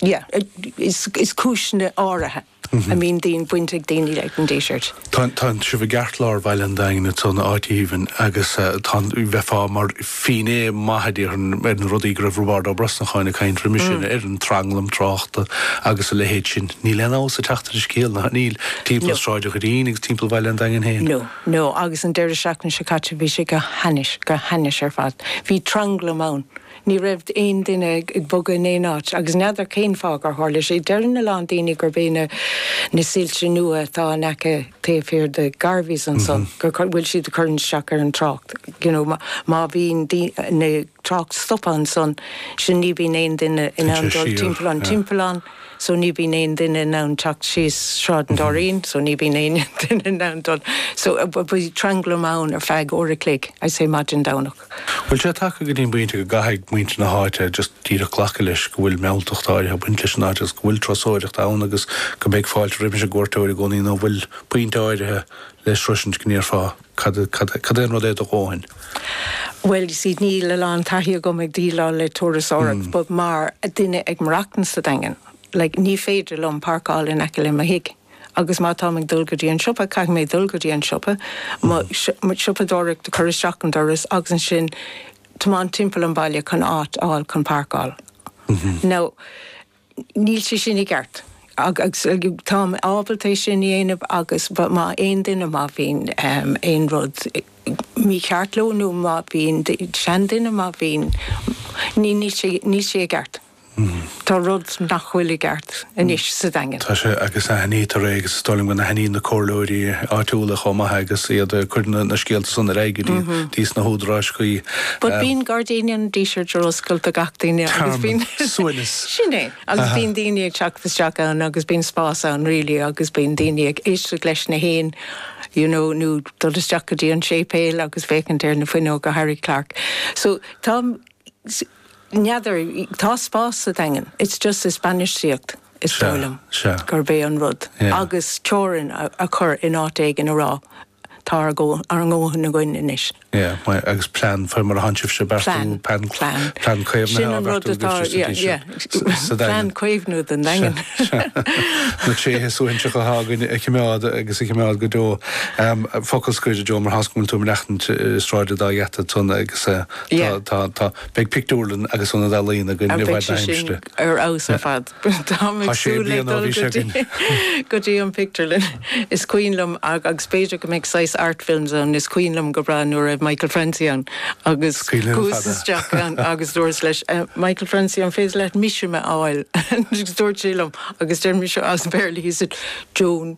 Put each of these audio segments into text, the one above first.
Is cúiseanna áirithe a mbíonn baint ag daoine leis an Díseart. Tá sibh i gceartlár bhaile an Daingin tá an áit aoibhinn agus bheifeá mar finné maith a déarfainn ar na rudaí go raibh Roibeard Ó Brosnacháin ag caint roimis sin air, an tranglam tráchta agus a leithéid sin. Níl aon fheabhas ag teacht ar an scéal, nach níl? Timpeall Sráid an Doirín agus timpeall bhaile an Daingin féin. No, no, agus an deireadh seachtaine seo caite bhí sé go h-ainnis, go h-ainnis ar fad. Bhí tranglam ann. Ní raibh aon duine ag bogadh in aon áit, agus n'fheadar cén fáth gur tharla sé. Deireann a lán daoine gurb é na na soilse nua atá in aice taobh thiar de Garveys ansan, go bhfuil siad ag cur isteach ar an trácht. You know, má bhíonn an trácht stoptha ansan, so ní bhíonn aon duine in ann dul timpeall an timpeallán, so ní bhíonn aon duine in ann teacht síos Sráid an Doirín, so ní bhíonn aon duine in ann dul. So, bhí tranglam ann ar feadh uair a chloig, I'd say, maidin Domhnach. Bhfuil sé tagtha go dtí an bpointe go gcaithfidh muintir na háite just díreach glacadh leis go bhfuil mealltacht áirithe ag baint leis an áit agus go bhfuil turasóireacht ann agus go mbeidh fáilte roimis an gcuairteoir i gcónaí nó bhfuil pointe áirithe le sroisint go ndéarfá cad cad é an rud é do dhóthain? Bhuel you see níl a lán taithí agam ag díleáil le turasóireacht but mar duine ag maireachtaint sa Daingean like ní féidir liom parkáil in aice le mo thig. agus má táim ag dul go dtí an siopa, caithfidh mé dul go dtí an siopa, mo siopadóireacht a chur isteach an doras agus ansin tiomáint timpeall an bhaile chun áit a fháil chun páirceáil. Now, níl sé sin i gceart agus táim ábalta é sin a dhéanamh agus má aon duine, má bhíonn aon rud mícheart leo nó má bhíonn seanduine, má bhíonn, níl sé i gceart. Tá rud nach bhfuil i gceart anois sa Daingean. Tá sé, agus aithnítear é, agus is dóigh liom go n-aithníonn na comhairleoirí áitiúla chomh maith é agus iad ag cur na scéalta san ar aghaidh go dtí sna húdaráis chuí. But bíonn gairdíní an Dísirt ar oscailt do gach duine agus bíonn, sin é, agus bíonn daoine ag teacht isteach ann agus bíonn spás ann really agus bíonn daoine ag éisteacht leis na héin you know nó dul isteach go dtí an séipéal agus féachaint ar na fuinneoga Harry Clarke so tá N'fheadar, tá spás sa Daingean, it's just is bainistíocht is dóigh liom gurb é an rud agus teorainn a chur in áit éigin a rá tá ár ndóthain againn anois. Yeah my agus plean faoi mar atánn sibhse ag beartú plean plean caomhnaithe á bheartú agaibhse sa Daingean. Sin an rud atá yeah yeah sa Daingean. Plean caomhnú don Daingean. Na tréithe suaithinseacha atá againn a chimeád agus a chimeád go deo. Focal scoir a Joe mar toisc go bhfuil tú ag maireachtaint i Sráid an Dá Gheata tánn agus Tá, tá, tá. Beidh pictiúrlann agus ionad ealaíon againn i bhfad na haimsire. Beidh sé sin ar fheabhas ar fad. Táim ag súil le dul go dtí, go dtí an pictiúrlann. Is cuimhin liom, agus b'fhéidir go mbeidh saghas Art Films ann, is cuimhin liom go breá nuair a raibh Michael Francie ann agus chuas isteach ann agus dúras leis, Michael Francie, an féidir leat mise a fháil? Dúirt sé liom, agus deir mise as Béarla, he said, Joan.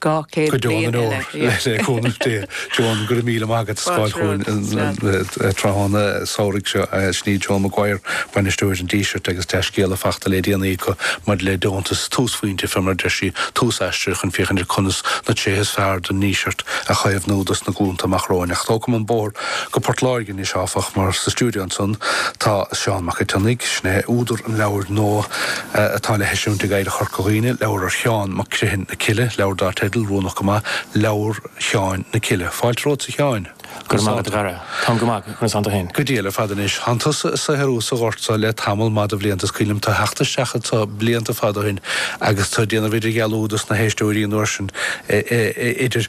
Go deon in ór le cúnamh Dé. Joan, go raibh míle maith agat as gabháil chugainn an tráthnóna samhraidh seo. Sin í Joan Maguire, Bainisteoir an Dísirt agus dea-scéala fachta le déanaí aici maidir le deontas túsphointe fé mar a deir sí, tús aistir chun féachaint ar conas na tréithe is fearr den nDíseart a chaomhnú dos na glúnta amach romhainn. Ach tógam an bóthar go Port Láirge anois áfach mar sa stiúideo ansan tá Seán Mac an tSionnaigh. Sin é údar an leabhair nua atá le heisiúint ag Oidhreacht Chorca Dhuibhne, leabhar ar Sheán Mac Criomhthain. na Cille, leabhar dar teideal, Rúnach go maith, Leabhar Sheáin na Cille. Fáilte romhat, a Sheáin. Go raibh maith agat, a Dhara. Táim go maith, agus tusa féin? Go diail ar fad. Anois, tánn tusa ag saothrú sa ghort so le tamall maith de bhlianta. Is cuimhin liom tu ag teacht isteach anso blianta fada ó shin agus tu ag déanamh idirdhealú do sna héisteoirí an uair sin idir.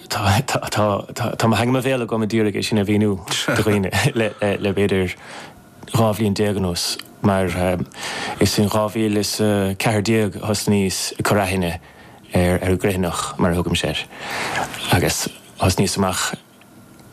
tá, tá, tá, tá, tá mo theanga mo bhéal agam ag iarraidh é sin a mhíniú do dhaoine le, le b'fhéidir dhá bhliain déag anuas mar is in 2014 a thosnaíos ag cur aithne ar, ar an gCriomhthanach mar a thugaimse air agus thosnaíos amach.